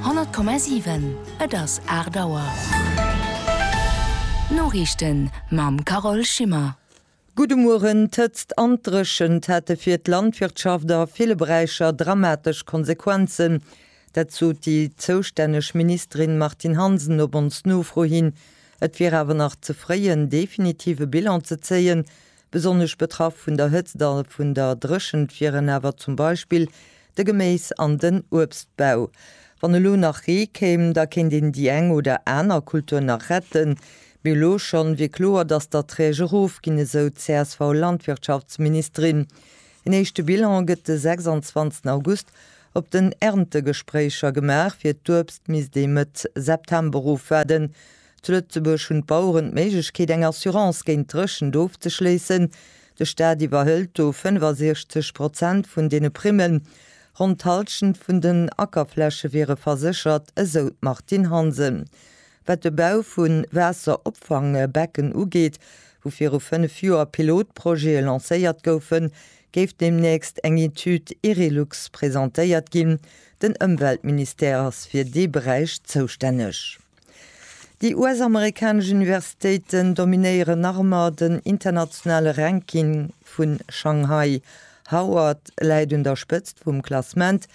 Honnert Komma siwen, et ass aacht Auer. D'Noriichten mam Carole Schimmer. Gudde Mueren. D'Hëtzt an d'Dréchent hate fir d'Landwirtschaft a ville Beräicher dramatesch Konsequenzen. Dat sot déi zoustänneg Ministerin Martine Hansen op ons Nofro hin. Et wier awer nach ze fréi en definitive Bilan ze zéien, Besonnesch betraff vun der Hëtzt a vun der Dréchent wieren awer zum Beispill de Geméis an den Uebstbau. Wann elo nach Ree kéim, da kéint een déi eng oder aner Kultur nach retten, mee elo schonn wier kloer, datt d'Erträg erofginn, esou d'CSV-Landwirtschaftsministerin. Een éischte Bilan gëtt de 26 August op den Erntegespréicher gemaach, fir d'Uebst misst ee Mëtt September ofwaarden. Zu Lëtzebuerg hunn d'Baueren d'Méiglechkeet eng Assurance géint d'Dréchent ofzeschléissen. De Staat iwwerhëlt do 65 Prozent vun deene Primmen. Ronn d'Hallschent vun den Ackerfläche wiere verséchert, esou d'Martine Hansen. Wat de Bau vu Waasseropfangbecken ugeet, wou viru fënnef Joer Pilotprojete lancéiert goufen, géif deemnächst eng Etüd Erilux presentéiert ginn. Den Ëmweltministère ass fir dee Beräich zoustänneg. Déi US-amerikanesch Universitéiten dominéieren nach ëmmer den internationale Ranking vun Shanghai. Howard läit un der Spëtzt vum Klassement.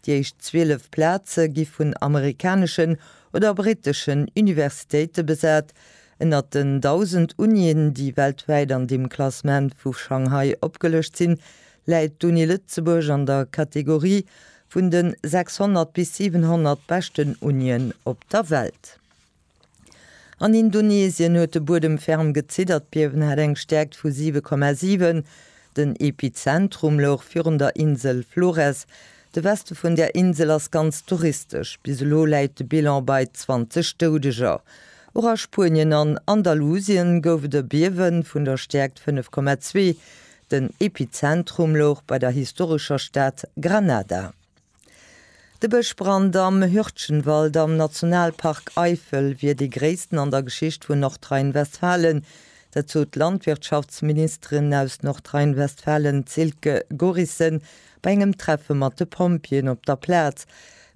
Déi éischt 12 Plaze gi vun amerikaneschen oder britteschen Universitéite besat. Ënnert den 1.000 Unien, déi weltwäit an deem Klassement vu Shanghai opgelëscht sinn, läit d'Uni Lëtzebuerg an der Kategorie Vun de 600 bis 700 beschten Unien op der Welt. An Indonesien huet de Buedem ferm geziddert. D'Biewen hat eng Stäerkt vu 7,7. Den Epizentrum louch virun der Insel Flores. De Weste vun där Insel ass ganz touristesch. Bis elo läit de Bilan bei 20 Doudeger. Och a Spuenien an Andalusien gouf et e Biewe vun der Stäerkt 5,2. Den Epizentrum louch bei der historescher Stad Granada. De Bëschbrand am Hürtgenwald am Nationalpark Eifel wier dee gréissten an der Geschicht vun Nordrhein-Westfalen. Dat sot d'Landwirtschaftsministerin aus Nordrhein-Westfalen Silke Gorissen bei engem Treffe mat de Pompjeeën op der Plaz.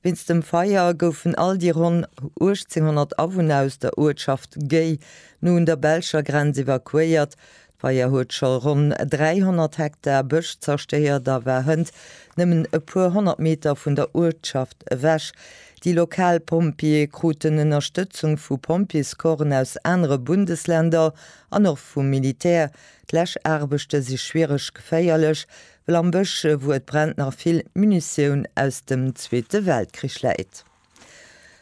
Wéinst dem Feier goufen all déi ronn 1800 Awunner aus der Uertschaft Gey no un der belscher Grenz evakuéiert. D'Feier huet scho ronn 300 Hektar Bësch zerstéiert a war hënt nëmmen e puer honnert Meter vun der Uertschaft ewech. Déi lokal Pompjeeë kruten Ënnerstëtzung vu Pompjeescorpsen aus anere Bundesländer an och vum Militär. D'Läschaarbechte si schwiereg, geféierlech, well am Bësch, wou et brennt, nach vill Munitioun aus dem Zweete Weltkrich läit.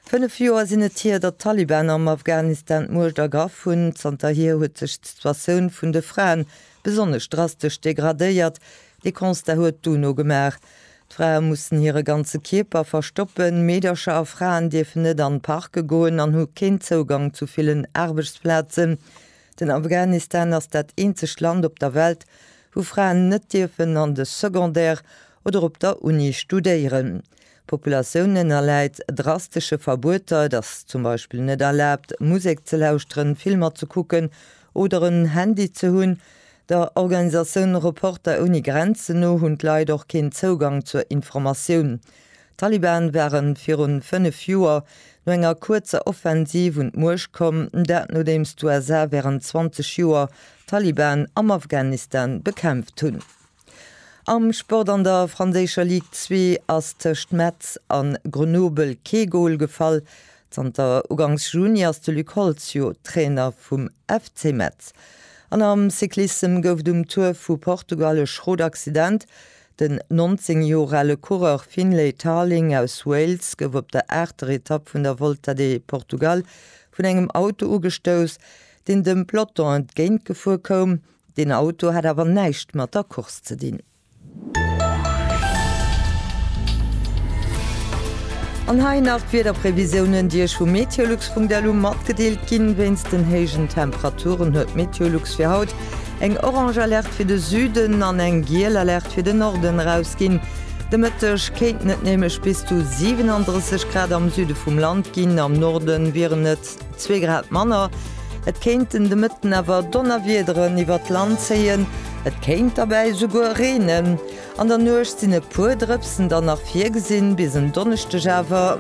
Fënnef Joer sinn et hier, datt d'Taliban am Afghanistan d'Muecht ergraff hunn. Zanterhier huet sech d'Situatioun vun de Fraen besonnesch drastesch degradéiert. Dee Constat huet d'UNO gemaach. D'Frae mussen hire ganze Kierper verstoppen, Meedercher a Fraen dierfen net an Parke goen an hu keen Zougang zu villen Aarbechtsplazen. Den Afghanistan ass dat eenzegt Land op der Welt, wou Fraen net dierfen an de Secondaire oder op der Uni studéieren. D'Populatioun ënnerläit drastesche Verbueter, et ass zum Beispill net erlaabt, Musek ze lauschteren, Filmer ze kucken oder en Handy ze hunn. Der Organisatioun Reporter ouni Grenzen no hunn d'Leit och keen Zougang zur Informatioun. D'Taliban ware virun fënnef Joer no enger kuerzer Offensiv un d'Muecht komm, dat nodeems d'USA wärend 20 Joer d'Taliban am Afghanistan bekämpft hunn. Am Sport, An der franséischer Ligue 2 ass tëscht Metz a Grenoble kee Gol gefall. Zanter ugangs Juni ass de Luc Holtz jo Trainer vum FC Metz. An am Cyclissem gouf et um Tour vu Portugal e schrot Accident. Den 19 Joer ale Coureur Finlay Tarling aus Wales gouf op der aachter Etapp vun der Volta de Portugal vun engem Auto ugestouss, deen dem Peloton entgéintgefuer koum. Deen Auto hat awer näischt mat der Course ze dinn. An hei nach d'Wiederprevisiounen, déi Iech vu meteolux.lu matgedeelt ginn. Wéinst den héijen Temperaturen huet meteolux fir haut eng orange Alerte fir de Süden an eng giel Alerte fir den Norden erausginn. De Mëtteg kéinten et nämlech bis zu 37 Grad am Süde vum Land ginn, am Norde wieren et Zwee Grad manner. Et kéinten de Mëtten awer Donnerwiederen iwwer d'Land zéien, et kéint derbäi souguer reenen. An der Nuecht sinn e puer Drëpsen dann nach virgesinn, bis en Donneschdeg awer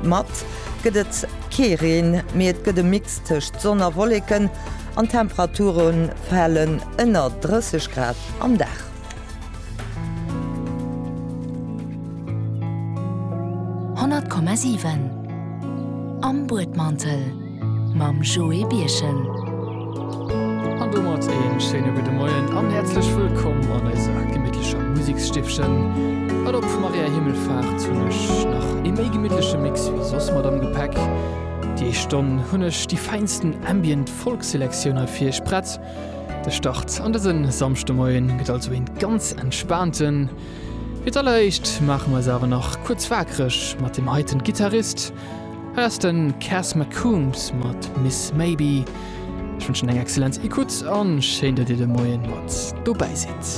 mat gëtt et kee Reen, mee et gëtt e Mix tëscht Sonn a Wolleken an d'Temperature fale ënner 30 Grad am Dag. Honnert Komma siwen Am Buedmantel mam Joé Birchen. An domat een schéine gudde Moien an häerzlech wëllkomm an eiser gemittlecher Museksstiffchen. Well op Maria Himmelfahrt hunn ech nach ee méi gemittleche Mix wéi soss mat am Gepäck. Déi éischt Stonn hunn ech déi fäinsten Ambient Folk Selektioun hei fir iech prett. De Start an dësen Samschdemoien gëtt also een ganz entspaanten. Fir d'alleréischt maachen mer eis awer nach kuerz waakreg mat dem heiten Gitarrist. Hei ass den Cass McCombs mat Miss Maybe. Ech wënschen eng excellent Ecoute an schéin dat dir de Moien mat dobäi sidd.